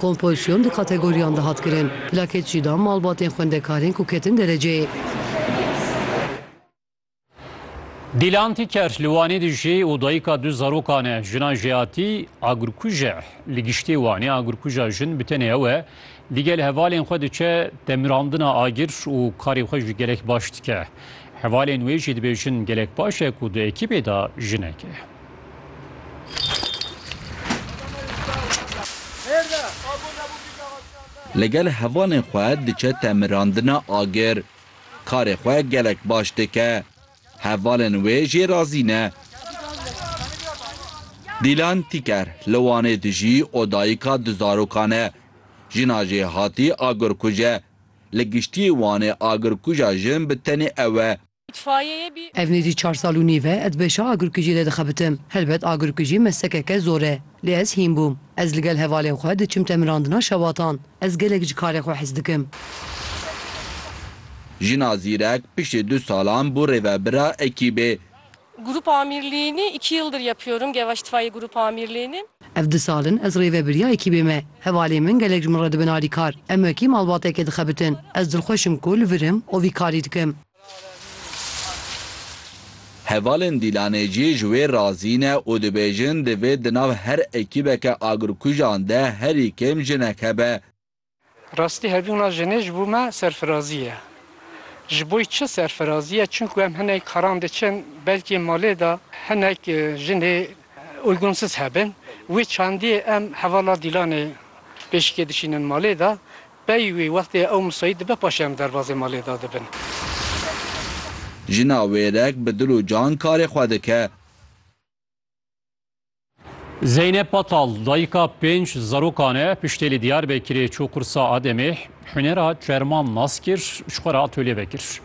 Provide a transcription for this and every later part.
Kompozîsyon du kategoriyan de hat kirin, plakêt jî dan malbatên xwendekarên ku ketin dereceyê. Dîlan Tîker li Wanê dijî û dayika du zarokan e. Jina Jeyatî agirkuj e. Li giştê Wanê agirkuja jin bi tenê ew e. Digel hevalên xwe diçe demirandina agir û karê xwe jî gelek baş dike. Hevalên wê jî dibêjin gelek baş e ku di ekîbê de jinek e. Li gel hevalên xwe diçe temirandina agir. Karê xwe gelek baş dike. Hevalên wê jê razî ne. Dîlan Tîker li Wanê dijî û dayika du zarokan e. Jina jê hatî agirkuj e. Li giştî Wanê agirkuja jin bi tenê ew e. Ev nêzî çar sal û nîv e ez beşa agirkujî de dixebitim. Helbet agirkujî meslekeke zor e. Lê ez hîn bûm. Ez li gel hevalên xwe diçim temirandina şewatan. Ez gelek ji karê xwe hez dikim. Jina zîrek piştî du salan bû rêvebira ekîbê. Grup amirliğini iki yıldır yapıyorum Gevaş İtfaiye Grup Amirliğini. Ev du sal in ez rêvebiriya ekîbê me. Hevalên min gelek ji min re dibin alîkar. Em wekî malbateke dixebitin. Ez dilxweş im ku li vir im û vî karî dikim. Hevalên Dîlanê jî ji wê razî ne û dibêjin divê di nav her ekîbeke agirkujan de herî kêm jinek hebe. Rastî hebûna jinê ji bo me serfirazî ye. Ji bo çi serfirazî ye? Çunku em hinek caran diçin belkî malê de hinek jinê uygunsuz hebin. Wê çandî em hevala Dîlanê pêşikê dişînin malê de. Pey wî wextê ew musayît dibe paşê em derbazê malê de dibin. Jina wêrek bi dil û can karê xwe dike. Zeynep Patal dayika pênc zarokan e piştê li Diyarbekirê çû qursa Ademê hunera çerman nas kir ji xwe re atolye vekir.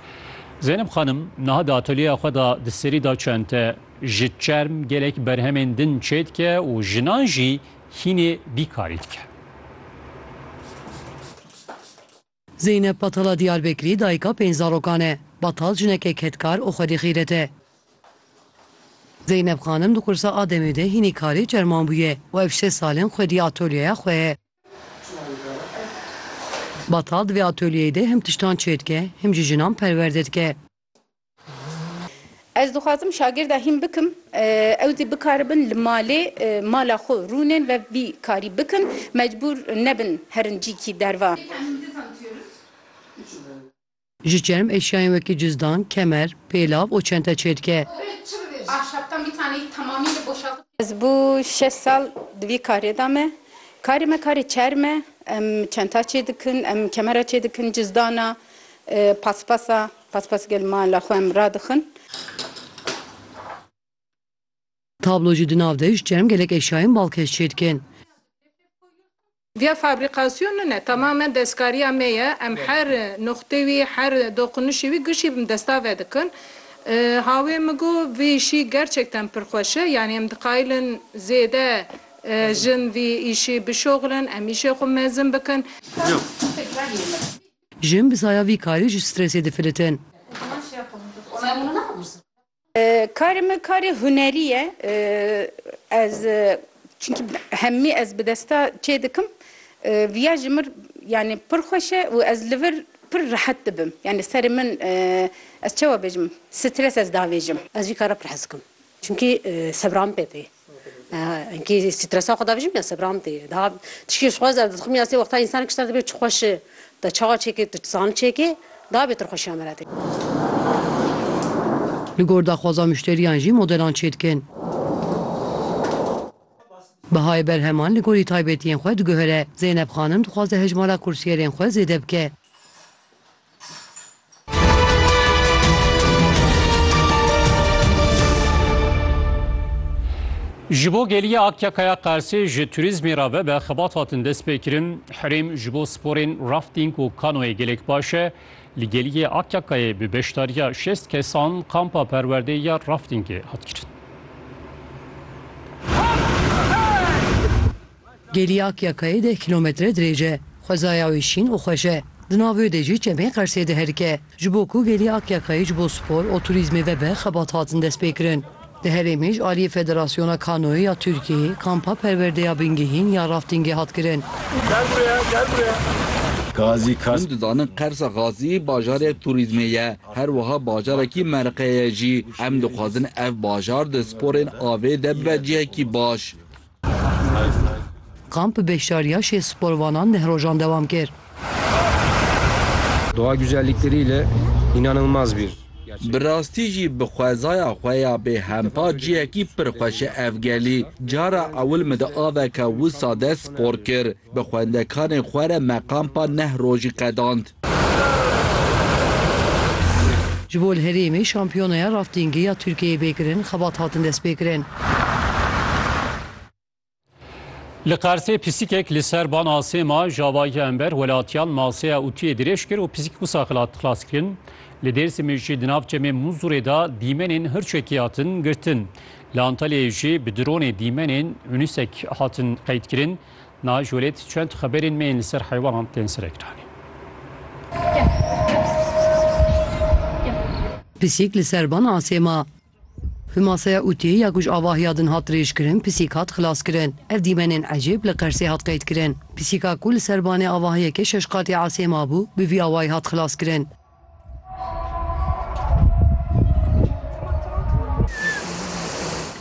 Zeynep xanim niha di atolyeya xwe de di serî da çend te ji çerm gelek berhemên din çê dike û jinan jî hînê vî karî dike. Zeynep Batala Diyarbekirî dayika pênc zarokan e. Batal jineke kedkar û xwedî xîret e. Zeynep xanim di qursa a demê de hînî karê çerman bûye û ev şeş sal in xwedî atolyeya xwe ye. Batal di vê atolyeyê de him tiştan çêdike, him jî jinan perwerde dike. Ez dixwazim şagirda hîn bikim ew zî bikaribin li malê mala xwe rûnên ve vî karî bikin mecbûr nebin herin cîkî derva. Ji çerm eşyayên wekî cizdan, kemer, pêlav û çente çêdike. Ez bû şeş sal di vî karê de me. Karê me karê çerm e. Em çenta çêdikin, em kemera çêdikin, cizdana. Paspasa paspas gel mala xwe em radixin. Tablo jî di nav de ji çerm gelek eşyayên balkêş çêdikin. Via fabrikasyon min e, temamen destkariya me ye, em her nuqtê wî, her doqunişê wî gişî bi desta vedikin. Hawê min got vê îşî gerçekten pir xweş e, yanî em diqayilin zêde jin vî îşî bişoxilin, em îşê xwe mezin bikin. Jin bi saya vî karî ji stresê difilitin. Karê min karê hunerî ye. Ez çinkî hemî ez bi desta çê dikim. Viya ji min yanî pir xweş e û ez li vir pir rehet dibim. Yanî serê min ez çawa bêjim stres ez davêjim. Ez vî kara pir hez dikim. Çinkî sebran pê tê. Enkî stresa xwe davêjim ya Sebram tê. Daha tişkî ji xwe zer dixwim ya sê wexta însanek ji te re dibê tu xweş e, tu te çawa çêkê, tu dizanî çêkê daha bêtir xweşiya me re tê. Li gor daxwaza muşteriyan jî modelan çêdikin. Bihayê berheman li gorî taybetiyên xwe diguhere. Zeynep xanim dixwaze hejmara kursiyerên xwe zêde bike. Ji bo geliya Akyakaya Qersê ji turîzmê re ve be xebat hatin destpêkirin. Herêm ji bo sporên rafting û kanoyê gelek baş e. Li geliyê Akyakayê bi beşdariya şêst kesan kampa perwerdê ya raftingê hat kirin. Gêliyak ya kayê deh kîlometre dirêj e. Xwezaya wê şîn û xweş e. Di nav wê de jî çemê Qersê diherike. Ji bo ku gêlî Akyakayê ji bo spor û turîzmê vebe xebat hatin destpêkirin. Di herêmê ji aliyê Federasyona Kanoyê ya Tirkiyeyê kampa perwerdeya bingehîn ya raftingê hat kirin. Hûn dizanin Qersa Xasî bajarek turîzmê ye, her wiha bajarekî meriqe ye jî. Em dixwazin ev bajar di sporên avê de bibe cihekî baş. Kamp beşdariya şêst sporvanan deh rojan dewam kir. Doğa güzellikleriyle inanılmaz bir Bi rastî jî bi xwezaya xwe ya bêhempa cihekî pir xweş e ev gelî. Cara ewil min di aveke wisa de spor kir. Bi xwendekarên xwe re me kampa neh rojî qedand. Ji bo li herêmê şampiyonaya raftingê ya Tirkiyeyê bê kirin, xebat hatin destpêkirin. Li Qersê pisîkek li ser bana sê ma javahiya ember welatiyan maseya utuyê dirêj kir û pisîk wisa xilat xilas kirin. Li Dêrsimê jî di nav çemê Muzurê de dîmenên hirçekî hatin girtin. Li Antalyayê jî bi dronê dîmenên Unisec hatin qeydkirin. Na jolêt çend xeberên me yên li ser heywanan tên serekdanîn. Pisîk li ser van asê ma. Bi maseya ûtiyê ya ku ji avahiya din hat dirêjkirin pisîk hat xilaskirin. Ev dîmenên ecêb li Qersê hat qeydkirin. Pisîka ku li ser vanê avahiyeke şeş qatî asê mabû bi vî awayî hat xilaskirin.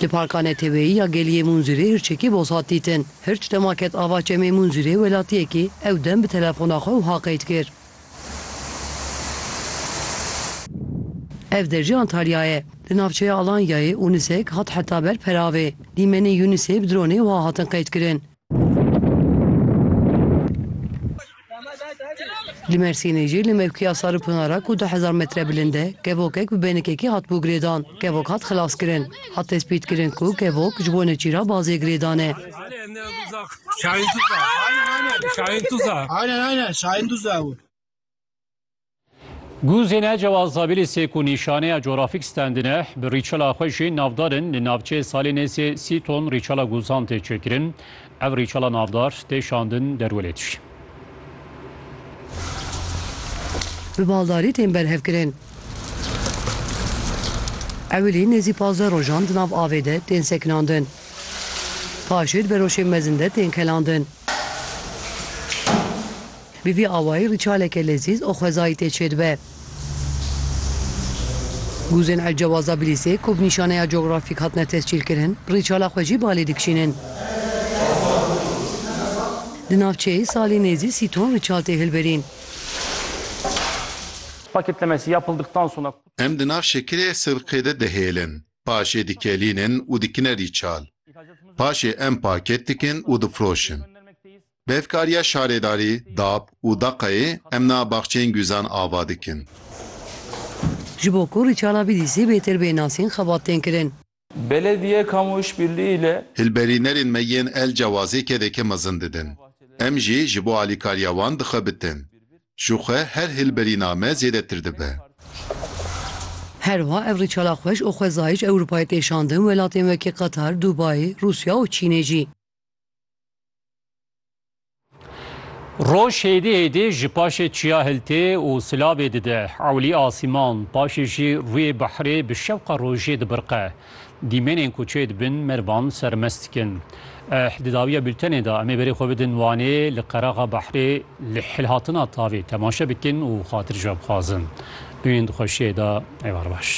Li Parka Neteweyî ya Geliyê Munzurê hirçekî boz hat dîtin. Hirç dema ket ava çemê Munzurê welatiyekî ew dem bi telefona xwe wiha qeyd kir. Ev der jî Antalya ye. Di navçeya Alanyayê û nisek hat heta ber peravê. Dîmenê Yûnisê bi dronê wiha hatin qeydkirin. Li Mersînê jî li mevkiya Saripinara ku du hezar metre bilind e kevokek bi benikekî hatibû girêdan. Kevok hat xilaskirin. Hat tespîtkirin ku kevok ji bo neçîra bazê girêdan e. Guzêne Cewaz Zabîlî sê ku nîşaneya Coğrafik Standineh bi rîçela xwe jê navdar in li navçeyê salê nêzê sî ton rîçela guzan tê çêkirin. Ev rîçela navdar tê şandin derwelê dijî. Bi baldarî tên berhevkirin. Ewilî nêzî pazdeh rojan di nav avê de tên sekinandin. Paşê di beroşên mezin de tên kelandin. Bi vî awayî rîçaleke lezîz û xwezayî tê çêdibe. Guzên Elcewaza Bilîsê ku bi nîşaneya Geographic hatine tescîlkirin, rîçala xwe jî balê dikişînin. Di navçeyê salî nêzî sî ton rîçal tê hilberîn. Em di nav şekilê sirqê de dihêlin, paşê dikelînin û dikine rîçal. Paşê em paket dikin û difiroşin. Bevkariya şarêdarî Dap û Daqayê em na baxçeyên guzan ava dikin. Ji bo ku rîçala Bîdîsî bêtir bê nasîn xebat tên kirin. Belediye Kamu Îşbirlî île. Hilberînerên me yên El Cewazê kedeke mezin didin. Em jî ji bo alîkariya wan di xwe bitin. Ji xwe her hilberîna me zêdetir dibe. Her wiha ev rîçala xweş û xwezayî ji Ewropayê tê şandin welatên wekî Qatar, Dubayê, Rûsya û Çînê jî. Roj hêdî hêdî ji paşê çiya hiltê û silavê dide ewlî asîman, paşê jî rûyê behrê bi şewqa rojê dibirqe. Dîmenên ku çê dibin mervan sermest dikin. Eh di dawiya bûltenê de em ê berê xwe bidin Wanê li qeraxa behrê li hilhatina tavê temaşe bikin û xatircabixwazin. Dûyên di xweşiyê de êvar baş.